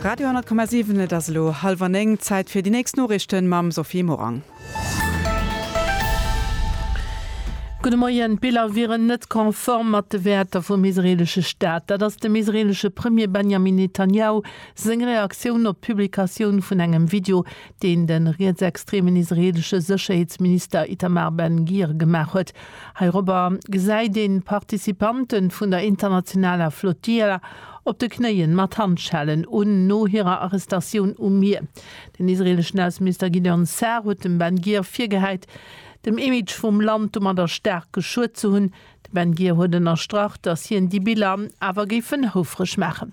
Radio 10,7 Et ass elo hallwer néng, Zäit fir déi nächst Noriichten mam Sophie Morang. Gudde Moien, D'Biller wieren net konform mat de Wäerter vum israeelesche Staat. Dat ass dem israeelesche Premier Benjamin Netanjahu seng Reaktioun op d'Publikatioun vun engem Video, deen de rietsextremen israeelesche Sécherheetsminister Itamar Ben Gir gemaach huet. Heirobber gesäit een d'Participantë vun der internationaler Flotilla op de Knéien mat Handschellen un no hirer Arrestatioun um Mier. Den israeeleschen Ausseminister Gideon Sa'ar huet dem Ben Gir virgehäit, dem Image vum Land domadder staark geschuet ze hunn. De Ben Gir huet ënnerstrach, datt hien déi Biller awer géifen houfreg maachen.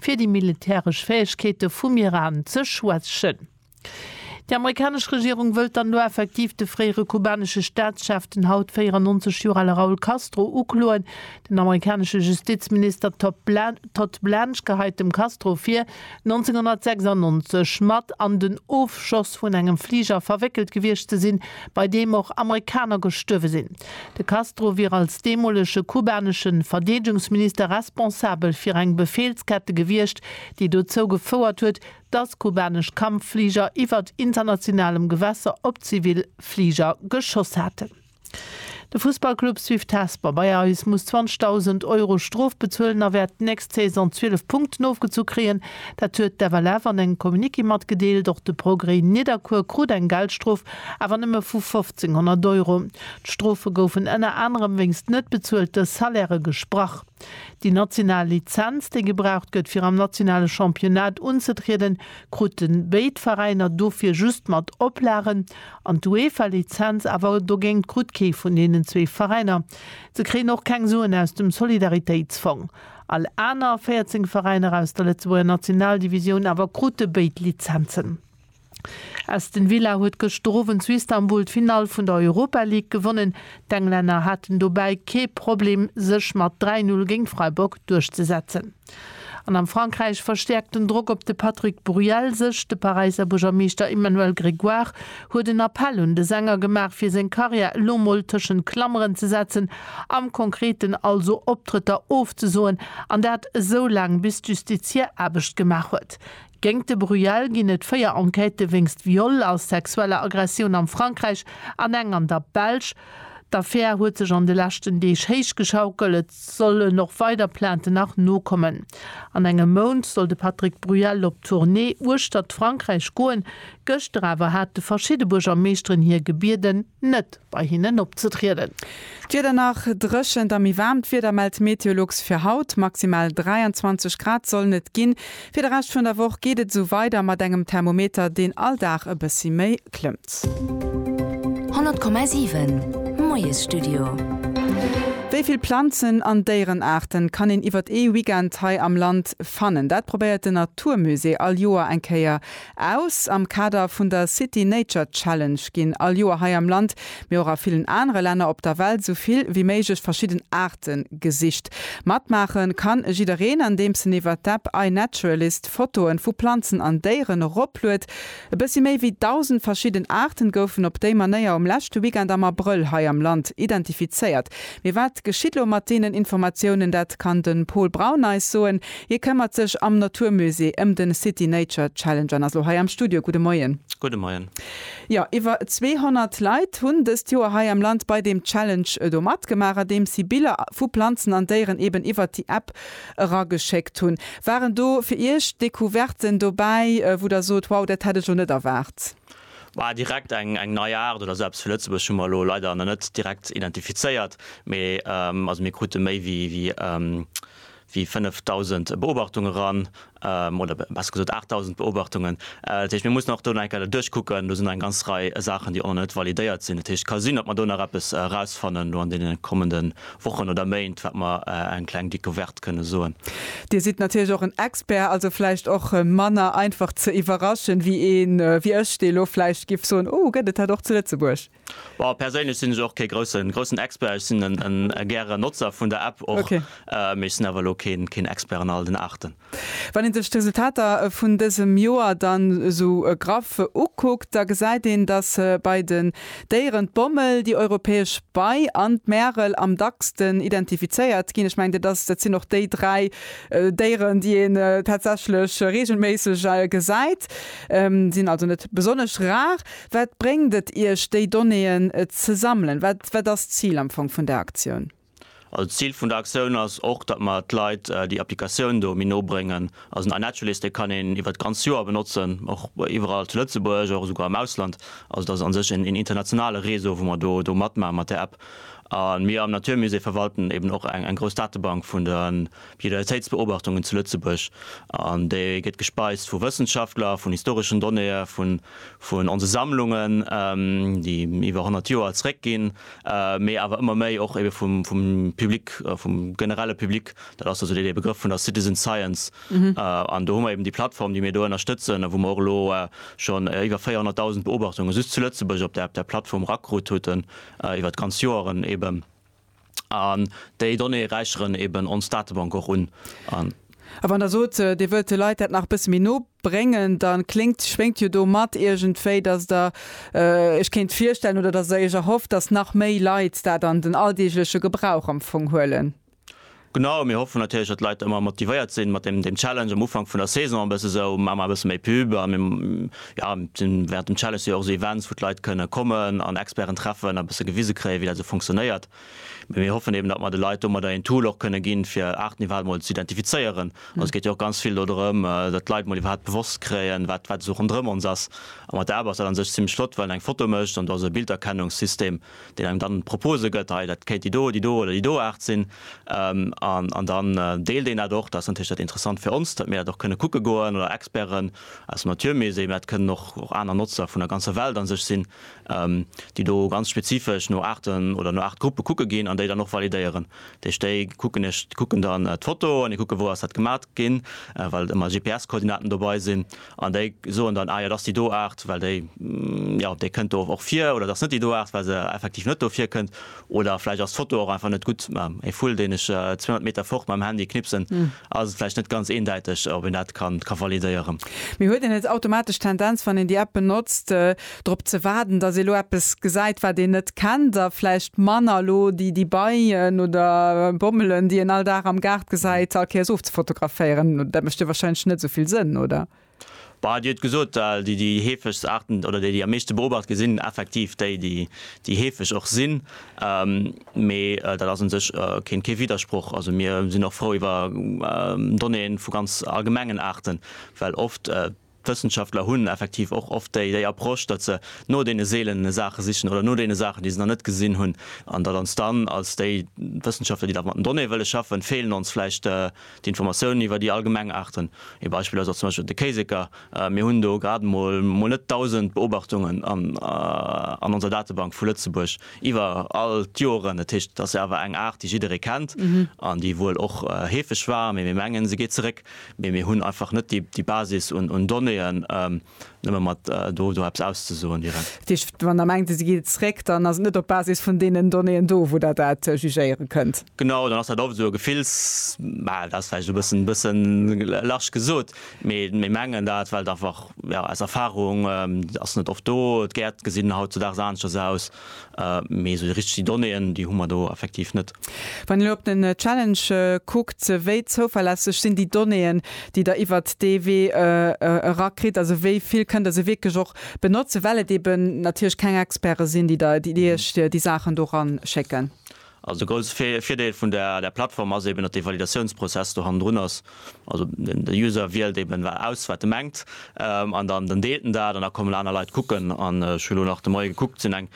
fir déi militäresch Fäegkeete vum Iran ze schwächen. Déi amerikanesch Regierung wëllt dann elo effektiv de fréiere kubanesche Staatschef, den haut 94 Joer ale Raul Castro, ukloen. Den amerikanesche Justizminister Todd Blanche geheit dem Castro vir, 1996 mat an den Ofschoss vun engem Fliger verwéckelt gewiescht ze sinn, bei deem och Amerikaner gestuerwe sinn. De Castro wier als deemolege kubanesche Verdeedegungsminister responsabel fir eng Befeelskette gewiescht, déi dozou gefouert huet, datt kubanesch Kampffliger iwwer internationalem Gewässer op zivil Fliger geschoss haten. De Fussballclub Swift Hesper bei eis muss 20.000 Euro Strof bezuelen a wäert d'nächst Saison 12 Punkten ofgezu kréien. Dat huet d'FLF an engem Communiqué matgedeelt. Och de Progrès Nidderkuer krut eng Geldstrof, awer nëmme vu 50. 1.500 Euro. D'Strofe goufen ënner anerem wéinst net bezuelte Salairë gesprach. Déi national Lizenz, déi gebraucht gëtt fir am nationale Championnat unzetrieden, kruten béid Veräiner dofir just mat Oplagen, an d'UEFA-Lizenz awer dogéint krut kee vun deenen zwee Veräiner. Se kréien och keng Suen aus dem Solidaritéitsfong. All aner 14 Veräiner aus der Lëtzebuerger Nationaldivisioun awer krute béid Lizenzen. Aston Villa huet gëschter Owend zu Istanbul d'Finall vun der Europa League gewonnen. D'Englänner haten dobäi kee Problem, sech mat 3, 0 géint Freiburg duerchzesetzen. An am Frankräich verstäerkt den Drock op de Patrick Bruel sech. De Paräisser Buergermeeschter Emmanuel Grégoire huet en Appell un de Sänger gemaach, fir seng Karriär elo mol tëschent Klammeren ze setzen, am Konkreten also Optrëtter ofzesoen, an dat esou laang bis d'Justiz hir Aarbecht gemaach huet. Géingt de Bruyel ginn et 4 Enquêtë wéinst Viol a sexueller Aggressioun am Frankräich an eng an der Belsch. D'Affär huet sech an de leschten Deeg héich geschaukelt. Et sollen och weider Plainten nach nokommen. An engem Mount soll de Patrick Bruyel op Tournée uechtert Frankräich goen. Gëschter awer hate verschidde Buergermeeschteren hie gebieden, net. bei hinnen opzetrieden. D'Wieder nach, Dréchent a méi waarmt Wieder mellt Meteolux fir haut. Maximal 23 Grad sollen et ginn. Fir de Rescht vun der Woch geet et esou weider mat engem Thermometer, deen all Dag e bëssi méi klëmmt. 100,7 Moiesstudio. Wéi vill Planzen an Déierenaarten kann een iwwert ee Weekend hei am Land fannen? Dat probéiert den Naturmusée all Joer eng Kéier Aus. Am Kader vun der City Nature Challenge ginn all Joer hei am Land, mee och a villen anere Länner op der Welt, sou vill wéi méiglech verschidden Aarte gesicht. Matmaache ka jiddereen, andeems en iwwer d'App iNaturalist Fotoe vu Planzen an Déieren eropluet. E bëssi méi wéi 1.000 verschidden Aarten goufen op déi Manéier um leschte Weekend am Abrëll hei am Land identifizéiert. Mee wat geschitt elo mat deenen Informatiounen? Dat kann de Pol Braun eis soen. Hie këmmert sech am Natur Musée ëm den City Nature Challenge an ass lo hei am Studio. Gudde Moien. Gudde Moien. Jo, iwwer 200 Leit hunn dëst Joer hei am Land bei deem Challenge do matgemaach, andeems si Biller vu Planzen an Déieren eben iwwert déi App erageschéckt hunn. Waren do fir Iech Decouverten dobäi, wou der sot, wow, dat hätt ech elo net erwaart? Bah, direkt eng eng nei Aart oder esou eppes fir Lëtzebuerg hu mer elo leider nach net direkt identifizéiert, mee also mir krute méi wéi wéi wéi 5.000 Beobachtunge ran, oder besser gesot 8.000 Beobachtungen. Dat heescht, mir mussen och do nach eng Kéier dat duerchkucken. Do sinn nach eng ganz Rei Saachen, déi och nach net validéiert sinn. Dat heescht, et ka sinn, datt mer do nach eppes erausfannen elo an deene kommende Wochen oder Méint, wat mer eng kleng Decouverte kënne soen. Dir sidd natierlech och en Expert, also vläicht och manner einfach ze iwwerraschen, wéi een wéi ech, dee elo vläicht giff soen, Oh, gëtt et dat och zu Lëtzebuerg? Bon, perséinlech sinn ech och kee groussen, groussen Expert. Ech sinn en, en e gäre Notzer vun der App och, Okay. äh, mee ech sinn awer elo keen, keen Expert an all den Aarten. Wann een sech d'Resultater vun dësem Joer dann esou graff ukuckt, da gesäit een, dass bei den Déieren d'Bommel, déi Europäesch Bei an d'Märel am dacksten identifizéiert ginn. Ech mengen, dat ass, dat sinn och déi dräi Déieren, déi een tatsächlech reegelméisseg gesäit, sinn also net besonnesch rar. Wat bréngt et Iech, déi Donnéeën ze sammelen? Wat, wat ass d'Zil am Fong vun der Aktioun? Also d'Zil vun der Aktioun ass och, datt mer d'Leit déi Applikatioun do méi no bréngen. Also den iNaturalist, dee kann een iwwert d'ganz Joer benotzen, och iwwerall zu Lëtzebuerg, och esouguer am Ausland. Also dat ass a sech een internationale Réseau, wou mer do, do matmaachen mat där App. A mir am Naturmusée verwalten eben och eng, eng grouss Datebank vun de Biodiversitéitsbeobachtungen zu Lëtzebuerg, an déi gëtt gespeist vu Wëssenschaftler, vun historeschen Donnéeë vun onse Sammlungen, déi iwwer 100 Joer zréckginn, mee awer ëmmer méi och ebe vum Public, vum generelle Public. Dat ass also dee dee Begrëff vun der Citizen Science. An do hu mer eben déi Plattform, déi mir do ënnerstëtzen a wou mer och elo schonn iwwer 400.000 Beobachtungen just zu Lëtzebuerg op där Plattform erakrut hutten, iwwer d'ganz Joeren ebe. an déi Donnéeë räicheren eben ons Datebank och un. A wann Der sot, Dir wëllt de Leit dat nach e bësse méi no bréngen, da kléngt, schwéngt jo do mat iergendwéi, dass Der Iech kéint virstellen oder dass Der Iech erhofft, dass nach méi Leit dat an den alldeegleche Gebrauch am Fong huelen. Genau, mir hoffen natierlech, datt d'Leit ëmmer motivéiert sinn, mat deem deem Challenge am Ufank vun der Saison e bësse sou, Maacht mol e bësse méi Pub. A mir, jo, sinn während dem Challenge si jo och sou Events, wou d'Leit kënne kommen an Experten treffen a bësse gewise kréien, wéi dat esou funktionéiert. Mee mir hoffen eben, datt mer de Leit domadder een Tool och kënne ginn, fir Aarten iwwerhaapt emol ze identifizéieren. Also et geet jo och ganz vill dodrëm, datt d'Leit mol iwwerhaapt bewosst kréien, wat wat esou ronderëm ons ass. A mat der App ass dat an sech zimmlech flott, well en eng Foto mécht an do ass e Bilderkennungssystem, deen engem dann Propose gëtt, hei dat kéint déi do, déi do oder déi do Aart sinn. An dann deelt een dat och, dat ass natierlech dat Interessant fir ons, datt mir dat och kënne kucke goen oder Experten aus dem Naturmusée, mä dat kënnen och aner Notzer vun der ganzer Welt a sech sinn, déi do ganz spezifesch no Aarten oder no Aartgruppe kucke ginn an déi dann och validéieren. Dat heescht, déi kucken dann d'Foto an déi kucke wou ass dat gemat ginn, well ëmmer GPS-Koordinaten dobei sinn. An déi soen dann, ah jo, dat ass déi do Aart, well déi, jo, déi kënnt do och vir, oder dat ass net déi do Aart, well se effektiv net do virkënnt, oder vläicht ass d'Foto och einfach net gutt. Mä e Vull, deen ech 200 Meter fort mam Handy knipsen, ass et vläicht net ganz eendäiteg, ob een dat ka validéieren. Mee huet een net automatesch d'Tendenz, wann een déi App benotzt, drop ze waarden, datt ee elo eppes gesäit, wat een net kennt a vläicht manner elo déi déi Beien oder Bommelen, déi een all Dag am Gaart gesäit, all Kéiers ofzefotograféieren. Dat mécht jo wahrscheinlech net esou vill Sënn, oder? Bah, Dir hutt gesot, well déi déi heefegst Aarten oder déi déi am meeschte beobacht gi sinn effektiv déi déi déi heefeg och sinn. Mee dat ass un sech keen kee Widdersproch. Also mir sinn och frou iwwer Donnéeën vu ganz allgemengen Aarten, well oft, D'Wëssenschaftler hunn effektiv och oft déi déi Approche, datt se no deene seelene Saache sichen oder no deene Saachen, déi se nach net gesinn hunn, an datt ons dann als déi Wëssenschaftler, déi da mat den Donnéeë wëlle schaffen, feelen ons vläicht d'Informatiounen iwwer déi allgemeng Aarten. Ee Beispill ass och zum Beispill de Kéiseker. Mir hunn do grad emol mol net 1.000 Beobachtungen an onser Datebank vu Lëtzebuerg iwwer all d'Joeren. Dat heescht, et ass jo awer eng Aart, déi jidderee kennt an déi wuel och heefeg war, mee mir mengen, se geet zeréck. Mee mir hunn einfach net déi Basis un Donnéeën, nëmme mat do eppes auszesoen direkt. Dat heescht, wann Der mengt, se geet zréck, dann ass et net op Basis vun deenen Donnéeën do, wou Der dat jugéiere kënnt? Genau, dann ass dat oft esou e Gefills, mä dat ass vläicht e bëssen, bësse large gesot. Mee mir mengen dat, well et einfach, jo, aus Erfahrung ass net oft do. D'Gäert gesinn hautzudaags aneschters aus. Mee esou déi richteg Donnéeën, déi hu mer do effektiv net. Wann een elo op den Challenge kuckt, wéi zouverlässeg sinn déi Donnéeën, déi Der iwwert dee Wee era kritt? Also wéi vill kënnt Der se wierklech och benotzen, well et eeben natierlech keng Experte sinn, déi Iech déi Saachen do eranschécken? Also de grousse Virdeel vun där Plattform ass eben, datt dee Validatiounsprozess do hannendrun ass. Also de User wielt eben aus, wat e mengt, an dann deelt en dat an da kommen aner Leit kucken. An ech hunn elo nach de Moie gekuckt, sinn eng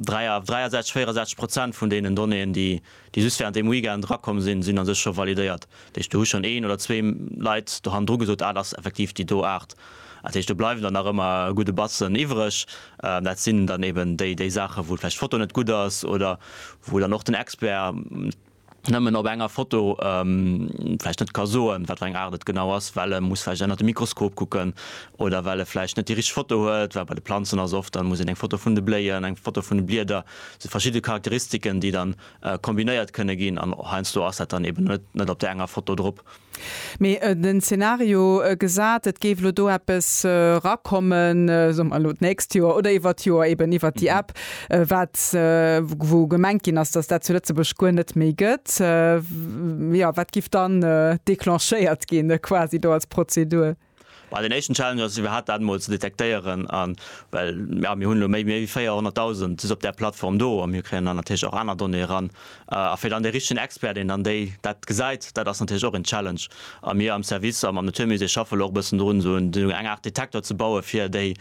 63, 64 Prozent vun deenen Donnéeën, déi just wärend deem Weekend erakomm sinn, sinn a sech scho validéiert. Dat heescht do hu schonn een oder zwee Leit do hannendru gesot, dat ass effektiv déi do Aart. Dat heescht do bleiwen der nach ëmmer e gudde Batzen iwwreg. Dat sinn dann eben déi déi Saache wou vläicht d'Foto net gutt ass oder wou dann och den Expert nëmmen op enger Foto vläicht net ka soen, wat fir eng Aart et genau ass, well e muss vläicht ënnert de Mikroskop kucken oder well e vläicht net déi richteg Foto huet. Well bei de Planzen ass oft, da muss een eng Foto vun de Bléien, eng Foto vun de Blieder, et si verschidde Charakteristiken déi dann kombinéiert kënne ginn an heiansdo ass dat dann eben net op där enger Foto drop. Mee den Szenario gesat, et géif elo do eppes erakommen, soe mer elo d'nächst Joer oder iwwert d'Joer eben iwwert déi App, wat, wou gemengt ginn ass, datt dat zu Lëtzebuerg guer net méi gëtt, jo, wat giff dann declenchéiert ginn quasi do als Prozedur? Bei den éischten Challenges, déi mir haten, dat emol ze detektéieren, a well jo, mir hunn elo méi wéi 400.000 just op där Plattform do a mir kréien dann natierlech och aner Donnéeë eran, a fir dann dee richtegen Expert, deen dann déi dat gesäit, dat ass natierlech och een Challenge. A mir am Service a mam Naturmusée schaffe elo och e bëssen drun, esou eng Aart Detektor ze baue fir déi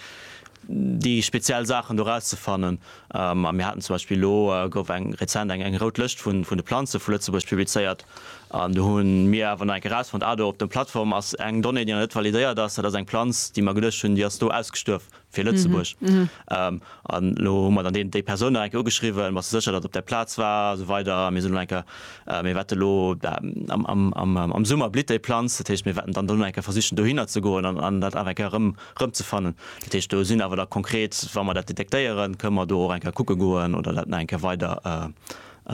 speziell Saachen do erauszefannen. A mir haten zum Beispill, elo gouf eng rezent eng rout Lëscht vun de Planze vu Lëtzebuerg publizéiert, an do hu mir awer nach eng Kéier erausfonnt, ah do op der Plattform ass eng Donnée, déi nach net validéiert ass, dat ass eng Planz, déi mer geduecht hunn, déi ass do ausgestuerf fir Lëtzebuerg. An elo hu mer dann déi Persoun nach eng Kéier ugeschriwwen, bass de sécher, datt et op där Plaz war a sou weider. A mir sinn elo nach eng Kéier, mir wäerte elo am Summer blitt déi Planz, dat heescht mir wäerten dann elo nach eng Kéier versichen dohinner ze goen an dat awer eng Kéier erëm rëmzefannen. Dat heescht, do sinn awer da konkret, wa mer dat detektéieren, kënne mer do och eng Kéier kucke goen oder dat nach eng Kéier weider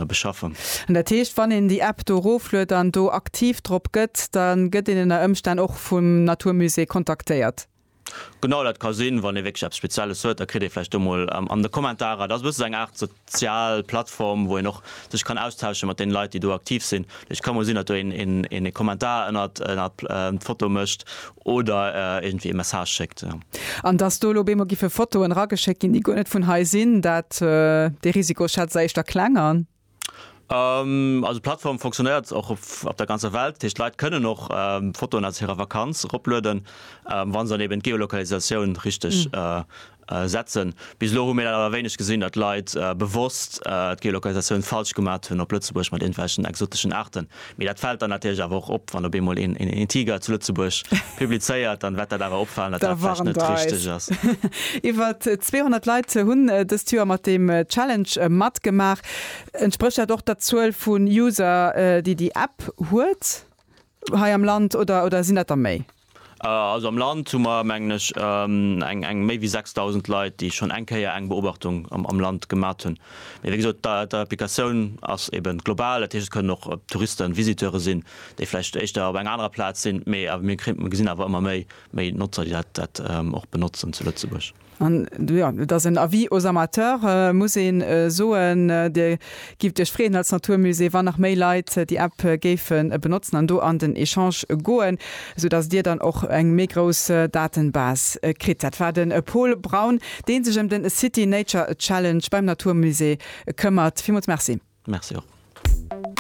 beschaffen. An dat heescht, wann een déi App do erofluet an do aktiv drop gëtt, da gëtt een ënner Ëmstänn och vum natur musée kontaktéiert? Genau, dat ka sinn. Wann ee wierklech eppes Spezielles huet, da kritt ee vläicht do mol an de Kommentarer, dat ass e bësse sou eng Aart, Sozial Plattform, wou een och sech kann austauschen mat den Leit déi do aktiv sinn. Ech kann mol sinn dat do een e Kommentar ënnert d'Foto mécht oder iergendwéi e Message schéckt. An dass do elo op eemol giffe Fotoen erageschéckt ginn déi guer net vun hei sinn, dat dee Risiko schätze éischter kleng an. Also d'Plattform fonctionnéiert och op der ganzer Welt, dat heescht d'Leit kënnen och Fotoen aus hirer Vakanz eroplueden, wa se dann eben d'Geolokalisatioun richteg Setzen. Bis elo hu mir dat awer wéineg gesinn, datt Leit bewosst d'Geolokalisatioun falsch gemaat hunn op Lëtzebuerg mat irgendwelchen exoteschen Aarten. Mee dat fällt dann natierlech awer och op, wann op eemol een een Tiger zu Lëtzebuerg publizéiert, dann wärt dat awer opfalen, datt dat vläicht net richteg ass. Iwwert 200 Leit hunn dëst Joer mat deem Challenge matgemaach. Entsprécht dat och der Zuel vun User, déi déi App huet hei am Land, oder sinn dat der méi? Also am Land hu mer, mengen ech, eng méi wéi 6.000 Leit, déi schonn eng Kéier eng Beobachtung am Land gemat hunn. Mee wéi gesot, d'Applikatioun ass eben global, dat heescht et kënnen och Touristen, Visiteure sinn, déi vläicht éischter op enger anerer Plaz sinn, mee mir gesinn awer ëmmer méi Notzer, déi dat och benotzen zu Lëtzebuerg. An jo, et ass en Avis aux amateurs, muss een soen. Dir gift Iech freeën als Naturmusée, wann nach méi Leit déi App géifen benotzen an do an den Echange goen, sou dass Dir dann och eng méi grouss Datenbase kritt. Dat war den Pol Braun, deen sech em den City Nature Challenge beim Naturmusée këmmert. Villmools Merci. Merci och.